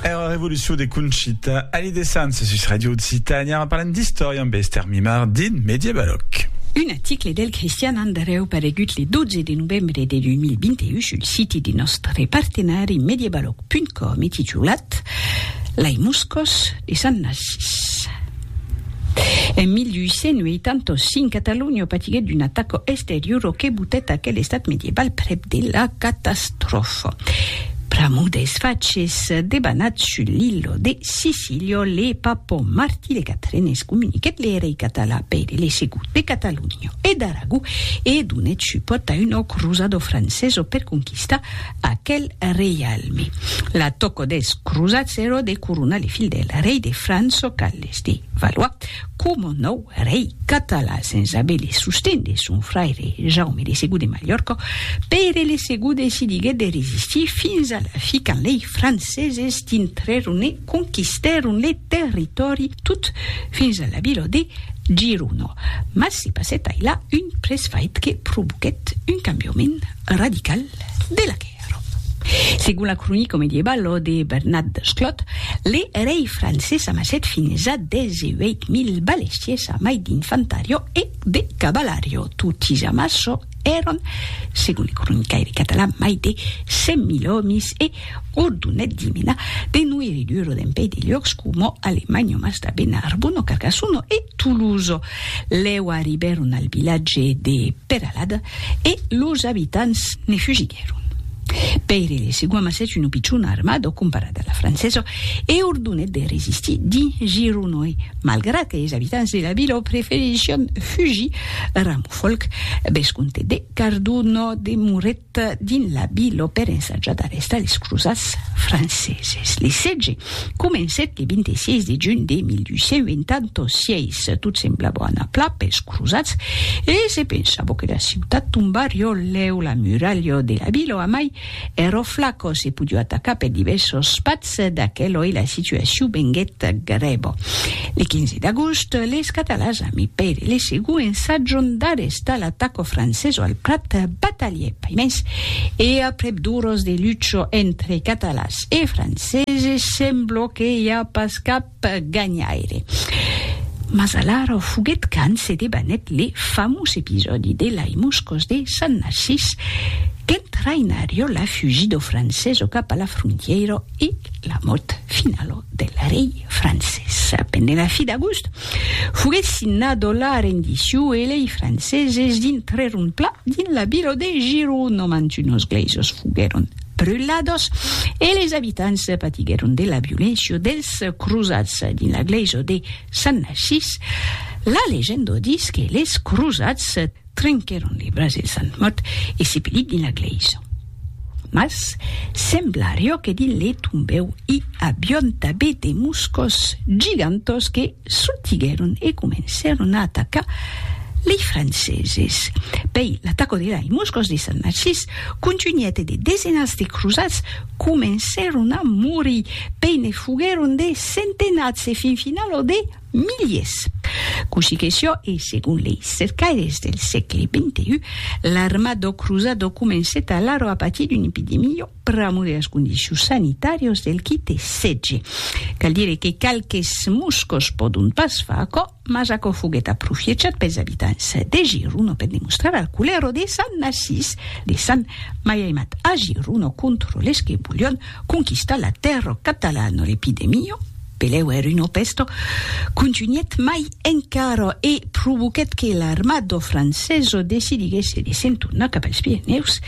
Era revolucion de Conchita Ali de Sants sus Radio Occitània en parlant d'istòria amb Esther Mimard dins Mediebaloc. Un article del Cristian Andareu paregut le 12 de novembre de 2021 sul siti de nòstre partenari mediebaloc.com e titulat Lai Moscòs de Sant Narcís. En 1885, Catalonha patiguèt un atac exteriora que botèt aquel estat medieval prèp de la catastròfa. Pr'amor dels faches debanats sus l'illa de Sicília, le papa Martí de Catrenes comuniquèt le rei català Pere le Segon de Catalonha e d'Aragó e donèt supòrt a una crosada francesa per conquistar Aquel reialme. La tòco des crosats ero de coronar le fil del rei de Franço Carles de Valois coma nòu rei catalan sens aver le sosten de son fraire Jaume de Segur de Malhòrca. Pere le Segur decidiguèt de resistir fins a la fi quand lei franceses dintrèron e conquistèron le territòri tot fins a la vila de Girona. Mas se passèt ailà un presfait que provoquèt un cambiament radical de la quèrra. Segon la cronica medievalo de Bernat Desclot, le rei francés amassèt fins a 18.000 balestiers a mai d'infantario e de cavalario. Totis amasso èran, segon le cronicaire catalan, mai de 100.000 òmis e ordonèt d'i menar de noiridur dempèi de luòcs coma Alemagno, Mastabèna, Arbona, Carcassono e Toulouse. Lèu arribèron al vilatge de Peralada e los abitants ne fugiguèron. Pèire de Segua amassèt una pichona armada comparada a la francesa e ordonèt de resistir dins Gironòi, malgrat que es abitants de la vila preferission fugir. Ramofolc, vescomte de Cardona, demorèt Dins la Vila per ensajadar estadis crosats franceses. Le sètge comencèt le 26 de junh de 1886. Tot semblava anar plan pels crosats e se pensava que la ciutat tombarió lèu la muralha de la Vila amai ero flaco se podió atacar per divèrsos patz. D'aquel oi la situacion venguèt grèva. Le 15 d'agost, les Catalans a mi pèri le segon ensajant d'arrestar l'ataco franceso al Prat, batalhèt pas mens e aprèp d'oras de lucha entre Catalans e Franceses, sembló que i a pas cap per ganhaire. Mas alara o foguet quand se debanèt le famós episòdi de lai Moscòs de Sant Narcís, qu'en trainar jo la fugit do francés o cap a la frontièira e la mòrt finala del rei francés. Pendent la fi d'agost, foguet signada la rendició e lei franceses dintrèron plan dins la vila de Girona, mantunos glèisers foguèron brulados e les abitants patiguèron de la violéncia dels crosats dins la glèisa de Sant Narcís. La legenda ditz que les crosats trenquèron le braç del Sant mòrt e sepelit dins la glèisa. Mas semblarió que dins le tombèu i avión tabé de moscos gigantós que, Sortiguèron e comencèron a atacar lei Franceses. Pei, l'ataco de lei Moscòs de Sant Narcís contunhèt e de desenats de crosats comencèron a morir, pei ne foguèron de centenats e fin finala o de miliers. Cossí que siá, e segon lei cercaires del sègle xxi, l'arma dau crosat o comencèt alara a patir d'una epidemia, pr'amor de las condicions sanitàrias del qui te setge. Cal dire que qualques moscos pòdon pas far aquò, mas aquò foguèt aprofiechat pels abitants de Giron per demostrar al culero de Sant Narcís de Sant Maiaimat a Giron contra les que volion conquistar la tèrra catalana l'epidemia Peleu er uno pesto contunhèt mai encara e provoquèt que l'armada francesa decidiguèsse de se'n tornar cap als Pirenèus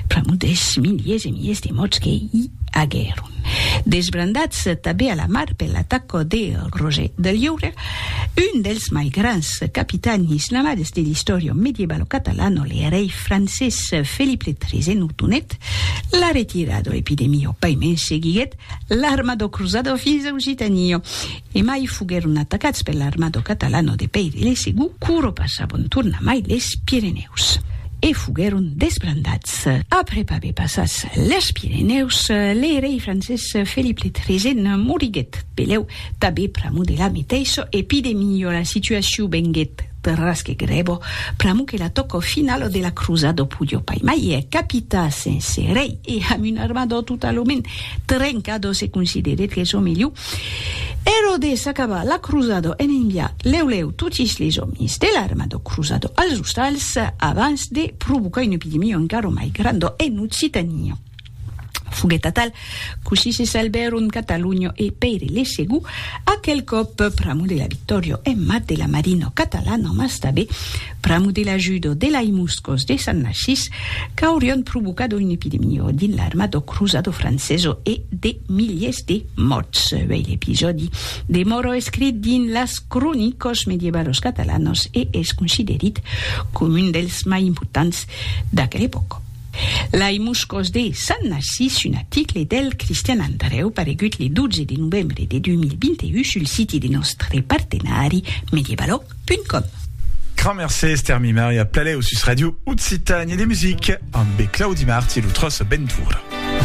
pr'amor dels miliers e miliers de mòrts que i aguèron. Desbrandats tanben a la mar per l'ataca de Roger de Lliure, un dels mai grands capitans islamades de l'istòria medievalo catalana, le rei francés Felip le Tresèn ordonèt la retirada. L'epidemia, paimens, seguiguèt l'armado cruzado fins a Occitania, e mai foguèron atacats per l'armado catalano de Pèire de Segú, quoro passavon tornamai les Pirenèus, e foguèron desbrandats. Aprèp aver passats les Pirenèus, le rei francés Felip le Tresen moriguèt, pelèu, tanbé pr'amor de la meteissa, e pide milhora situacion venguèt, Perras que grebo, pr'amo que la tòco finalo de la crosa do pudjo pai mai e capita sense rei e amb un armador totalament trencado se considerèt que çò melhor ero de s'acabar la crosado en enviar lèu lèu totis les òmis de l'armador crosado als ostals abans de provocar una epidemia encara mai granda en Occitania. Foguèt atal, cossí se salbèron Catalunho e Pèire le Segur, aquel còp pr'amor de la victòria en mat de la marina catalana, mas tanben pr'amor de l'ajuda de lai moscos de Sant Narcís qu'aurián provocado una epidemia dins l'armada cruzada francesa e de miliers de mòrts. Uèi l'episòdi demòra escrit dins las cronicas medievalas catalanas e es considerit coma un dels mai importants d'aquela epòca. Lai Moscòs de Sant Narcís, un aticle del Cristian Andrèu paregut le 12 de novembre de 2021 sul siti de nòstre partenari Medievalog.com. Grand mercé Esther Mimari a Plaleau sus Radio Occitanie de Musique ambe Claudi Marti lo Trosso Bentura.